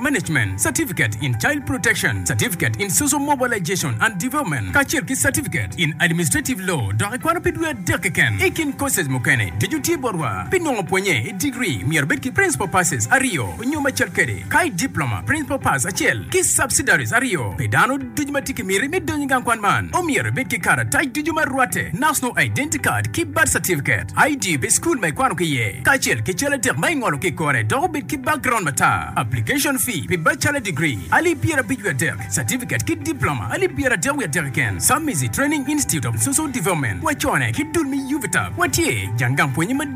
Management Certificate in Child Protection, Certificate in Social Mobilization and Development, kacel ki Certificate in Administrative Law, dok ikwano pi dwe adek keken. I kin courses mukene, ducu tye botwa. Pi nongo pwonye i degree, myero ibed ki Principal Passes aryo nyo macel kede, ka i Diploma, Principal Pass acel ki Subsidiaries aryo pi dano. Ducu ma tye ki miti me donyo i gang kwan man omyero ibed ki karatac ducu ma rwatte, National Identity Card ki Birth Certificate, ID pi cukul ma ikwano ki iye, kacel ki cal adek ma ingolo ki i kore dok obed ki background matar. Application fee pi Bachelor Degree, alip pyerabic wiye adek, Certificate ki Diploma, alip pyeradek wiye adek keken, Samizi Training Institute of Social Development, wacone ki dul me UVTAB, watye jang gang pwonye madit.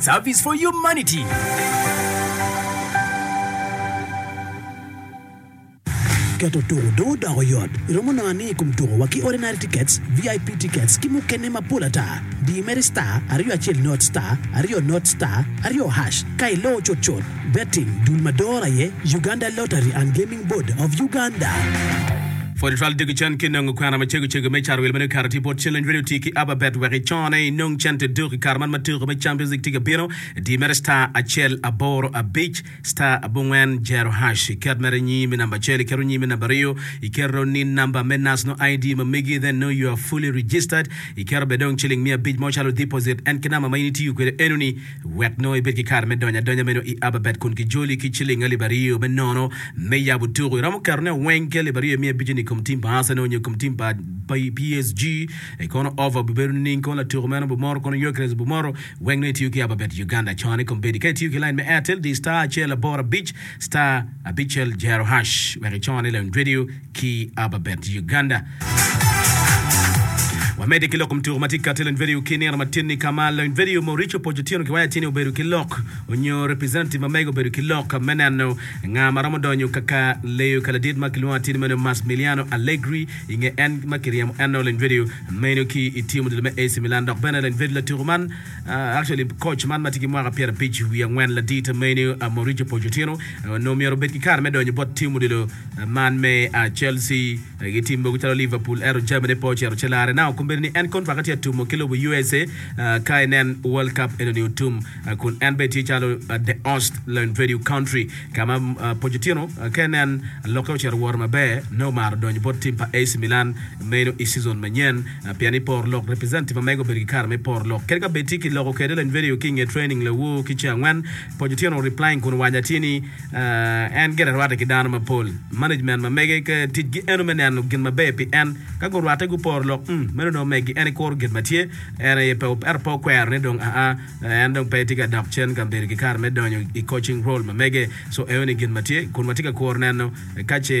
Service for Humanity. Keto tuko dong odoko yot. Iromo nongo ni i kom tuko wa ki Ordinary Tickets, VIP Tickets ki mukene mapol ata. Di mere star aryo acel not star aryo not star aryo hash ka iloo cutcut. Betting, Dul ma dor aye, Uganda Lottery and Gaming Board of Uganda. Pwony twal diko cen ki nongo kwena macego cego me car wil ma dong okato tye bot cen-ni. Rwed oti ki Ababet wek icone inong cente duk i kare man ma tuko me Champions League tye ka bino. Di mere star acel aboro abic star abongwen zero hash iket mere nyingi me namba acel iketo nyingi me namba aryo iketo ni namba me National ID ma megi then know you are fully registered iketo bene dong ciling miya abic mo calo deposit en ki namba ma in itiyo kwede enoni Wek nongo ibed ki kare me donyo adonya meno i Ababet kun kijoli ki ciling alip aryo me nono me yabo tuku, iromo ketone weng ki alip aryo imiyo abiconi i kom tim pa Arsenal nyo i kom tim pa PSG. I kono ofa obibedo nining? Kong latuku meno Bumoro kono Gyökeres Bumoro, wek nongo itiyo ki Ababet Uganda cone kono bedi ka itiyo ki line me Airtel di star acel aboro abic star abicel jero hash wek icone i Lounge Radio. ki Ababet, Uganda. Wamedde ki lok kom tuko ma tye kati Lony Vedio ki nino matinni ka ma Lony Vedio Mauricio Pojo Otieno ki waya tye-ni obedo ki lok onyo representative ma mege obedo ki lok me neno nga ma romo donyo kaka leyo ka ladit ma kilwongo atini meno Masmiliano Allegri i nge en ma kiryemo eno Lony Vedio meno ki i team odilo me AC Milan dok bene Lony Vedio latuko man actually coach man ma tye ki mwaka pyera abic wiye angwen ladit meno Mauricio Pojo Otieno onongo myero obed ki kare me donyo bot team odilo Man me a Chelsea gi tim mogo calo Liverpool ento Germany pe ocito ci larre. Now kombeddi ni en kontraka tye atumo ki lobo usa ka inen World Cup enoni otum kun en bene tye calo the host learn venue country ka ma Pochettino ka inen lokke ocito woro maber nongo omaro donyo bot tim pa AC Milan meno i season manyen pien ni poro lok representative ma mege obedo ki kare me poro lok kadi ka bed tye ki loko kwede learn venue ki inge training lawo ki ce angwen Pochettino replying kun owaco atir ni en gire rwatte ki dano mapol, management ma mege ka ticgi eno me neno gin maber pi en. Ka gurwatte guporo lok, mm, meno dong omeggi. En ikuro gin ma tye, en aye pe, ento pe okwero ni dong aa, en dong pe tye ka dok cen ka bedo ki kare me donyo i coaching role ma mege. So, eno ni gin ma tye, kun watye ka kuro neno ka ce.